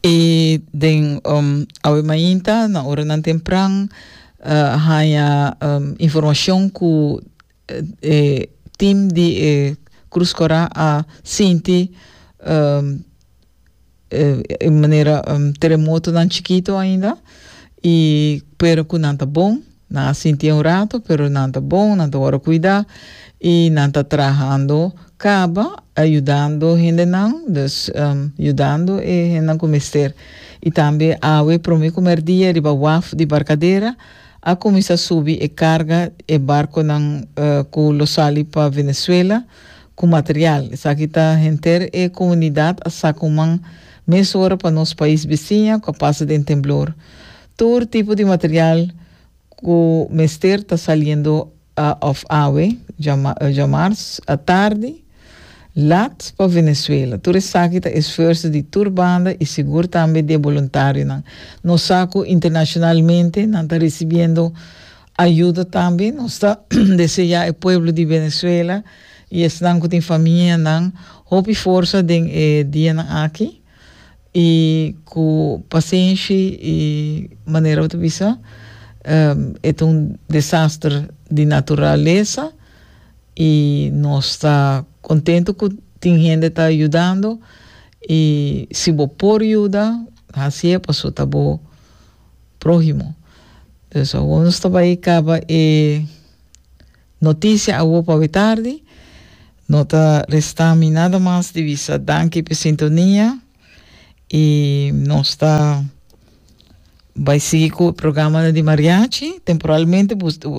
I den um, awe mainta, na oranan tempran, uh, haña um, informacion cu eh, e team di e Cruz Cora a sinti um, e manera um, terremotonan chikito ainda, y pero cu nan ta bon. Nan a sinti e un rato, pero nan ta bon, nan ta wòrdu kuidá i nan ta trahando kaba yudando hendenan, dus yudando e hendenan ku mester. I tambe awe promé ku mèrdia riba waf di barkadera a kuminsá subi e karga, e barkonan ku lo sali pa Venezuela ku material. Esaki ta henter e komunidat a sa kuman mes ora pa nos pais bisiña ku a pasa den temblor. Tur tipo di material cu mester ta saliendo a of awe, djamars, a tardi, lat pa Venezuela. Tur esaki ta esfuerso di tur banda y sigur tambe di e boluntarionan. Nos sa cu internacionalmente nan ta ricibiendo ayuda tambe. Nos ta desea e pueblo di Venezuela y esnan cu tin familianan hopi forsa den e dianan aki. I ku pasenshi i manera bo ta bisa e ta un desaster di naturalesa i nos ta kontentu ku tin hende ta yudando i si bo por yuda hasi e paso ta bo próhimo. Pues awor nos ta bai kaba e. Noticia awor pawe tardi. No ta resta mi nada mas di bisa danki p'e sintonia y nos ta bay sigui cu e programanan di mariachi, temporalmente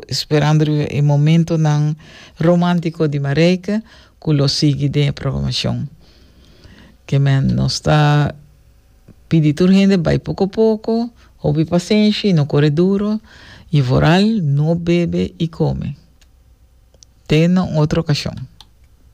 esperando e momentonan romantico di Marijke cu lo sigui den e programacion. Ke men nos ta. pidi tur hende bai poko poko, hopi pasenshi, no kore duro, i vooral no bebe i kome te na un otro okashon.